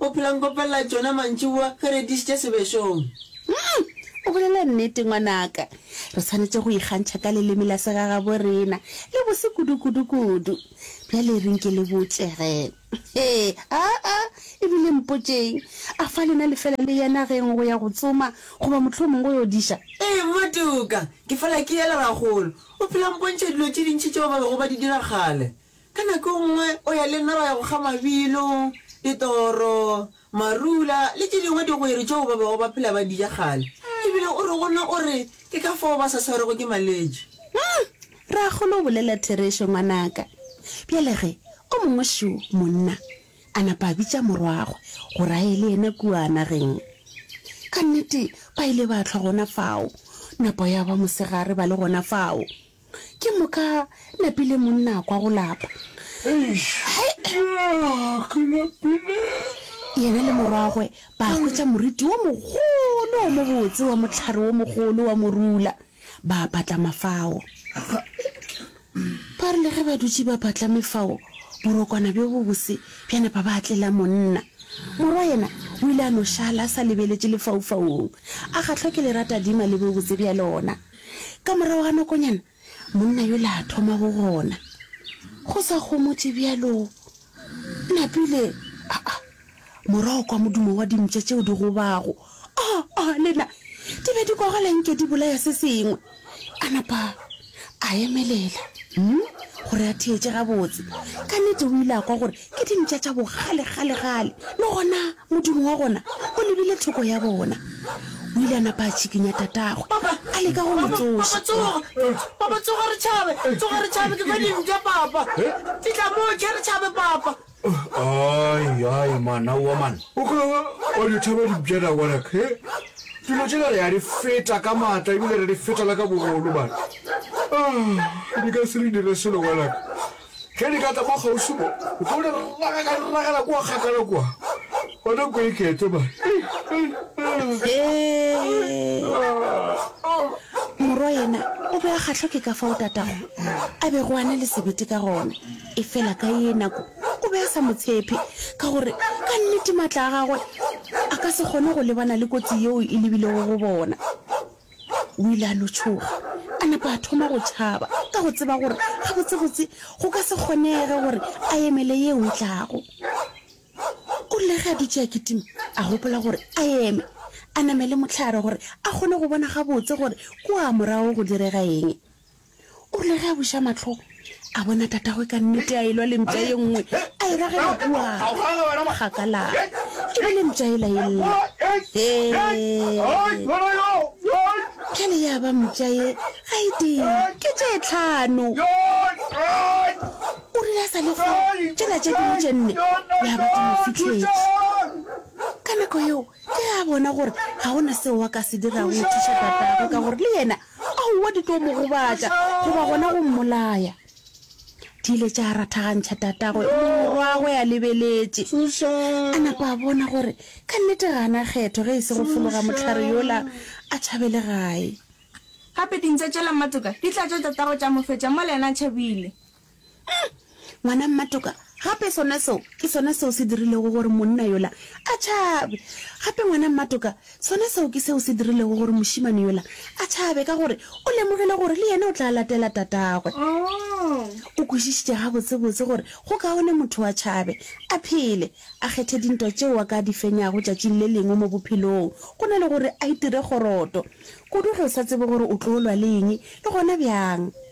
O phela nkopelela tšona mantšiboa ge re dišitše sebešong. Umm, o bolela nnete ngwanaka. Re swanetše go ikgantšha ka leleme la segagaborena. Le bose kudu, kudu, kudu. Bjale reng ke le botše ge. Hee, aa, e bile mpotšeng. A fa lena le fela le ya nageng go ya go tsoma goba mohlomong go yo diša? Ee, mmatuka, ke fela ke ya le rakgolo. O phela mpontšha dilo tše dintši tšeo ba bego ba di dira kgale. Ka nako nngwe o ya le nna ra ya go kga mabilo, ditoro, marula le tše dingwe digwere tšeo ba bego ba phela ba di ja kgale. E bile o re go nna o re, Ke ka fao ba sa swarwego ke malwetši. Umm! Rragolo o bolela therešo, ngwanaka. Bjale ge o mongwe šo monna a napa a bitša morwagwe gore a ye le yena kua nageng. Ka nnete ba ile ba hlwa gona fao, napa ya ba mosegare ba le gona fao. Ke moka napile monna a kwa go lapa. Yena le morwagwe ba hwetša moriti wo mogolo wo mobotse wa mohlare wo mogolo wa morula, ba patlama fao. Ba re le ge ba dutše ba patlame fao, borokwana bjo bobose bja napa ba tlela monna. Morwa yena o ile a no šala a sa lebeletše lefaufaung, a kgahlwa ke leratadima le bobotse bja lona. Ka morago ga nakonyana, monna yola a thoma go gona. Go sa gomotše bjalo, Napile, aa, morwa o kwa modumo wa dimpša tšeo di gobago. Aa, aa, le na, di be di kogela nke di bolaya se sengwe. A napa a emelela, hm, gore a theetše gabotse. Ka nnete o ile a kwa gore ke dintša tša bokgalekgalegale, le gona modumo wa gona o lebile thoko ya bona. O ile a napa a tšhikinya tatagwe, a leka go mo tsoša. Papa, tsoga re tšhabe! Tsoga re tšhabe! Ke fa dintša, Papa! Fihla moo, tšhe re tšhabe, Papa! Ai, ai, man, aowa, man. O ka ba wa di tšhaba dintša na, ngwanaka? He? Dilo tšela re a di feta ka matla ebile re di feta le ka bogolo, man. Ah, di ka se re dire selo, ngwanaka. Ge di ka tla mo kgauswi mo, o tlo di raga ka di ragela kua kgakala kua. Bona kua ikete ba. Morwa yena o be a kgahlwa ke ka fao tatago a bego a na le sebete ka gona. Efela ka ye nako o be a sa mo tshephe ka gore ka nnete matla a gagwe a ka se kgone go lebana le kotsi yeo e lebilego go bona. O ile a no tšhoga, a napa a thoma go tšhaba ka go tseba gore gabotsebotse go ka se kgonege gore a emele yeo e tlago. O rile ge a dutše a kitima, a gopola gore a eme, a namele mohlare gore a kgone go bona gabotse gore kua morago go direga eng. o rile ge a buša matlho a bona tatagwe ka nnete a elwa lempša ye nngwe a e ragela kua gakala e be lempša e laella bjale ya ba mpša ye ga e tee ke tše tlhano o rile a sa le go tšela tše dingwe tše nne ya ba ke mo fitlhetse ka nako yeo ke ge a bona gore ga go na seo wa ka se dirago go thuša tatagwe ka gore le yena Aowa, di tlo mo gobatša goba gona go mmolaya. Di ile tša rathagantšha tatagwe, morwagwe a lebeletše. A napa a bona gore ka nnete ga a na kgetho ge e se go fologa mohlare yola a tšhabe legae. Gape dintša tšela matoka di tlatša tatagwe tša mo fetša mola yena a tšhabile. Uhm, ngwana mmatoka, gape sona seo ke sona seo se dirilego gore monna yola a tšhabe. Gape ngwana mmatoka, sona seo ke seo se dirilego gore mošemane yola a tšhabe ka gore o lemogile gore le yena o tla latela tatagwe. O kwešišitše gabotsebotse gore go kaone motho a tšhabe, a phele, a kgethe dintwa tšeo a ka di fenyago tšatšing le lengwe mo bophelong go na le gore a itire kgoroto, kudu ge o sa tsebe gore o tlo lwa le eng le gona bjang.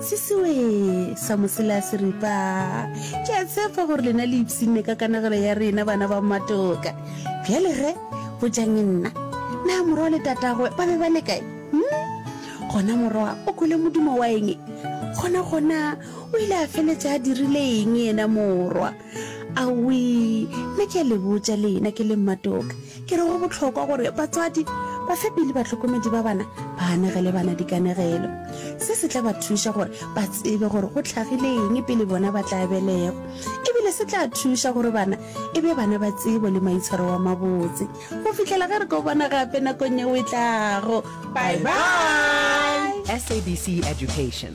Se sewe sa mosela se ripa. Ke a tshepa gore lena le ipsinne ka kanegelo ya rena bana ba mmatoka. Bjale ge, botšang nna. Na morwa le tatagwe ba be ba le kae? Hm? Gona morwa o kwele modumo wa eng? Gona-gona o ile a feletša a dirile eng yena morwa? Awii, nna ke a le botša lena ke le mmatoka, ke re go bohlokwa gore batswadi, bafepi le bahlokomedi ba bana ba anegele bana dikanegelo. Se se tla ba thuša gore ba tsebe gore go tlhagile eng pele bona ba tla belegwa. E bile se tla thuša gore bana e be bana ba tsebo le maitshwaro wa mabotse go fihlela ge re ko bona gape nakong yeo e tlago. Bye-bye! SABC Education.